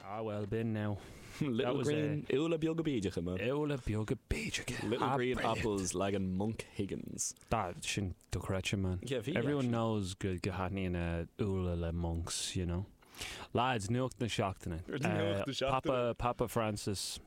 Ah well, b'in now. Little green úlla beaga bídeacha man. Úlla beaga bídeacha. Little green apples leagan Monkeys. Tá sin dochreidte man. Yeah, bhí, Everyone actually. knows go n-aithníonn úlla le monks, you know. Lads, nuacht na seachtaine. Nuacht na seachtaine. Papa, Papa Francis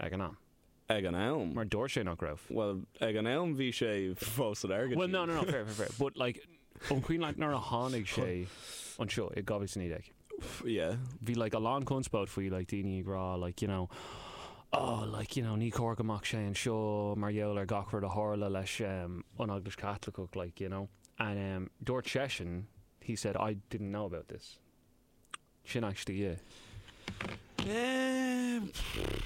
Ag an am. Ag an am. Mar dúirt sé nach raibh. Bhuel, ag an am bhí sé fós in airgead Bhuel, no, síos. no, no, fair, fair, fair. But, like, ó shoin, like, nuair a tháinig sé anseo in 2019, Yeah. bhí, like, a lán conspóid faoi, like, daoine ag rá, like, you know, oh, like, you know, ní chóir go mbeadh sé anseo mar gheall ar gach rud a tharla leis an Eaglais Chaitliceach, like, you know. And, um, dúirt seisean, he said, I didn't know about this. Sin aisteach. Ehh,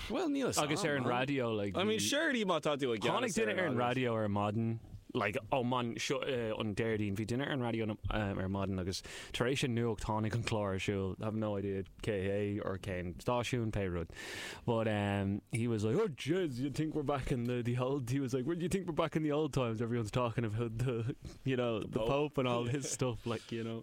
bhuel níl fhios a'm. Agus ar an raidió, like, I mean, surely má tá tú i gceannas ar an Eaglais. Tháinig duine ar an raidió ar maidin, like, ó maidin seo an Déardaoin, bhí duine ar an raidió ar maidin agus tar éis an nuacht tháinig an clár ar siúl, I have no idea cé hé or cén stáisiún, pé rud, but ehm he was like, oh jez, do you think we're back in the the old, he was like, do you think we're back in the old times, everyone's talking about the, you know, the Pope and all his stuff, like, you know.